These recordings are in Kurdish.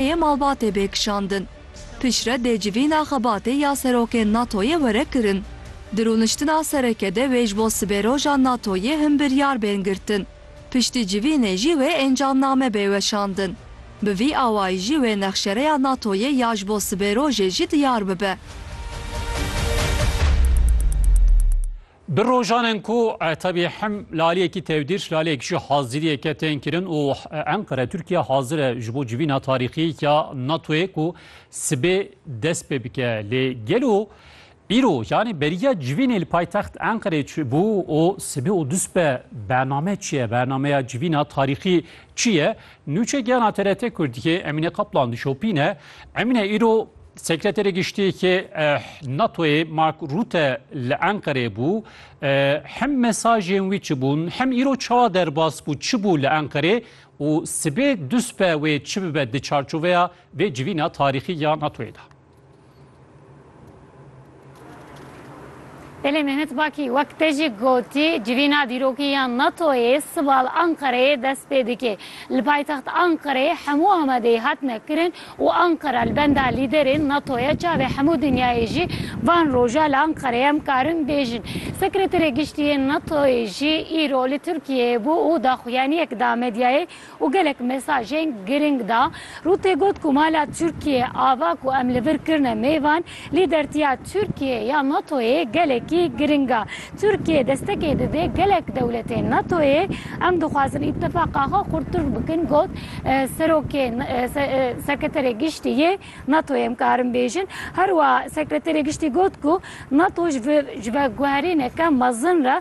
yê malbatê bê kişandin. Piştre dê civîna xebatê ya serokên NATO'yê were kirin. Di rûniştina sereke de wê ji bo sibêroja NATO'yê hin biryar bên girtin. Piştî civînê jî wê encamname bê weşandin. Bi vî awayî jî wê nexşereya NATO'yê ya ji bo sibêrojê jî diyar bibe. Di rojanan ku tevî hem laliyekî tevdîr laliyek jî haziriyeke tên kirin û Enqere Tirkiye hazir e ji bo civîna tarîxî ya NATOyê ku sibê dest pê bike lê gelo îro yanî beriya civînê li paytext Enqerê çi bû û sibê û duspe bername çi ye bernameya civîna tarîxî çi ye nûçe giyana TRT Kurdiyê Emîne Kaplan dişopîne Emîne îro Sekreterê Giştî yê NATOyê Mark Rutte li Enqereyê bû. Hem mesajên wî çi bûn, hem îro çawa derbas bû çi bû li Enqerê û sibê duspe wê çi bibe di çarçoveya vê civîna tarîxî ya NATOyê de. Belê Mehmet Bakî wek te jî gotî civîna dîrokî ya NATO'yê sibal Anqereyê dest pê dike. Li paytext Anqereyê hemû amadeyî hatine kirin û Anqera li benda lîderên NATO ye. Çavê hemû dinyayê jî van roja li Anqereyê em karin bêjin. Sekreterê Giştî yê NATO'yê jî îro li Tirkiyeyê bû û daxuyaniyek da medyayê û gelek mesajên girîng da. Rûtê got ku mala Tirkiyê ava ku em li vir kirine mêvan, lîdertiya Tirkiyê ya NATO'yê gelekî girîng a. Tirkiyê destekê dide gelek dewletên NATO'yê, em dixwazin îtîfaqa xwe xurttir bikin got Serokê Sekreterê Giştî yê NATO'yê em karin bêjin. Herwiha Sekreterê Giştî got ku NATO ji veguherîneke mezin re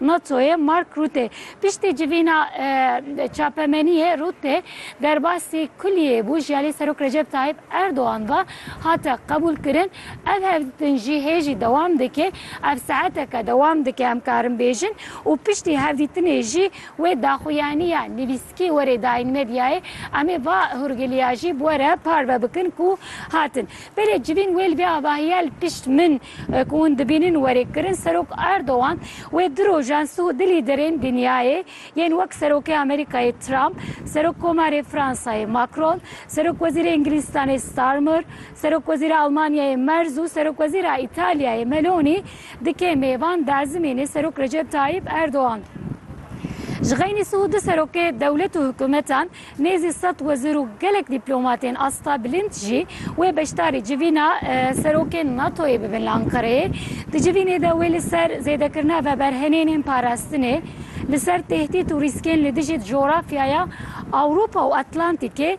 NATO'yê Mark Rutte piştî civîna çapemeniyê Rutte derbasî kulîyê bû ji alî Serok Recep Tayyîp Erdogan ve hate qebûlkirin. Ev hevdîtin jî hê jî dewam dike. Ev saeteke dewam dike em karin bêjin û piştî hevdîtinê jî wê daxuyaniya nivîs Kî werê dayîn medyayê? Em ê va hûrgiliya jî bi were parve bikin ku hatin. Belê civîn wê li vê avahiya li pişt min ku hûn dibînin werê kirin. Serok Erdogan wê du rojan siw du lîderên dinyayê yên wek Serokê Amerîkayê Trump, Serok Komarê Fransayê Macron, Serok Wezîrê Îngilîzstanê Starmer, Serok Wezîra Almanyayê Merz û Serok Wezîra Îtalyayê Meloni Di kêmê van derzimên ê Serok Recep Tayyip Erdogan ji xeynî sih û du serokê dewlet û hikumetan, nêzî sed wezîr û gelek dîplomatên asta bilind jî wê beşdarî civîna serokên NATO'yê bibin li Ankareyê. Di civînê de wê li ser zêdekirina veberhenênên parastinê, li ser tehdît û rîskên li dijî cografyaya Ewropa û Atlantîkê,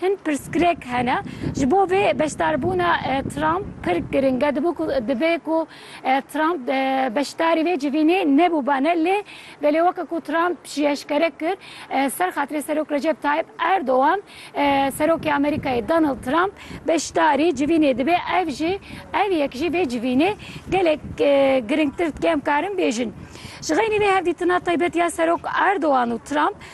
Hin pirsgirêk hene. Ji bo vê beşdarbûna Trump pir giring e. Dibû ku divê ku Trump beşdarî vê civînê nebûbane lê belê weke ku Trump jî eşkere kir ser xatirê Serok Recep Tayyip Erdogan Serokê Amerîkayê Donald Trump beşdarî civînê dibe ev jî ev yek jî vê civînê gelek giringtir dike em karin bêjin. Ji xeynî vê hevdîtina taybet ya Serok Erdogan û Trump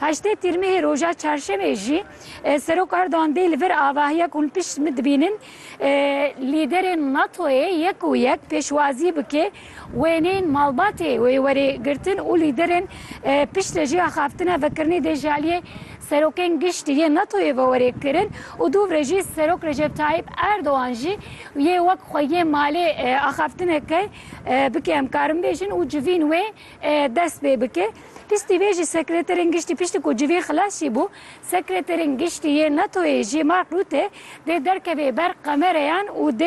Heştê Tîrmehê roja Çarşemê jî Serok Erdogan dê li vir avahiya ku hûn pişt min dibînin lîderên NATO'yê yek û yek pêşwazî bike wêneyên malbatê wê werê girtin û lîderên pişt li jê axaftina vekirinê dê ji aliyê serokên giştî yên NATO'yê ve werê kirin û dûvre jî Serok Recep Tayyip Erdogan jî yê wek xwe yê malê axaftineke bike em karin bêjin û civîn wê dest pê bike. Piştî vê jî Sekreterên Giştî piştî ku civîn xilas jî bû, Sekreterên Giştî yê NATO'yê Jean-Marc Rutte dê derkevê ber kamereyan û dê